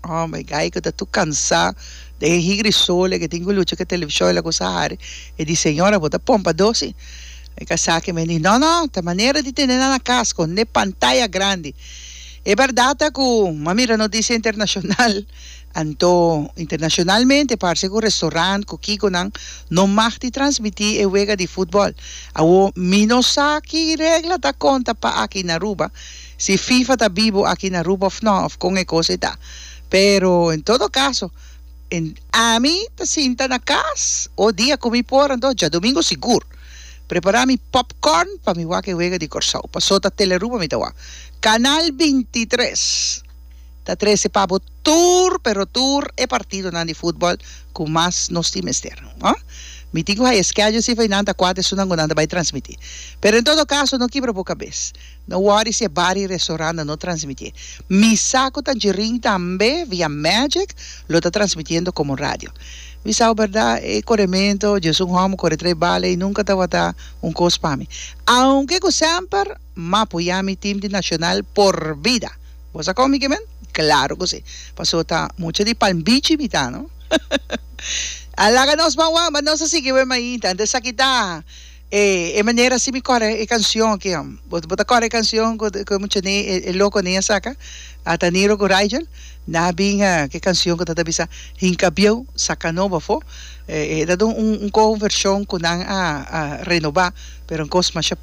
Oh my guy cu ta tur cansa den e higri sole cu tin cu lucha cu e televishon e la cosa hari e di señora bo ta pompa dosi e casaki men di no no ta manera di tene nan na cas scondi e pantaya grandi e berdad ta cu m'a mira noticia internacional anto internacionalmente parse cu restaurant cu kico nan no mag di transmiti e wega di footbal awo mi no sa ki regla ta conta pa aki na Aruba. si FIFA ta bibo aki na Aruba of no, of con e cosa e ta. Pero en todo caso, en ami ta sinta na cas o dia cu mi por anto djadomingo sigur prepara mi popcorn pa mi wak e wega di Corsou. Paso ta Telearuba mi ta wak. Canal binti tres ta trece pa bo tur pero tur e partidonan di futbol cu mas nos tin mester. Ho? Mi tin cu hay e schedule si fai nan ta cuat esunnan cu nan ta bay transmiti. Pero en todo caso no kibra bo cabes. No wori si e bari restouranda no transmití. Mi sa ku Tangerine tambe via Magic lo ta transmitiendo komo radio. Mi sa bo berdá e korementu dje es un hòmber kore trei bale i nunka tabata un kos pa mi. Aunke ku semper m'a poyá mi tim di Nacional por bida. Bo sa kon mi ke men? Klaru ku si. Pasó ta mucha di Palm Beach mi ta no. A laga nos banwan, but nos a sigui wen mainta. Anto esaki ta. E e manera así mi kore e canción aki ham. Bo bo ta kore e canción cu cu e muchani e e loconan a saca? A ta Niro cu Rigel? Na bin a cu e canción cu ta ta bisa Hinca bieu saca nobo afo. E e ta dun un un cover version cu nan a a renoba pero un cos masha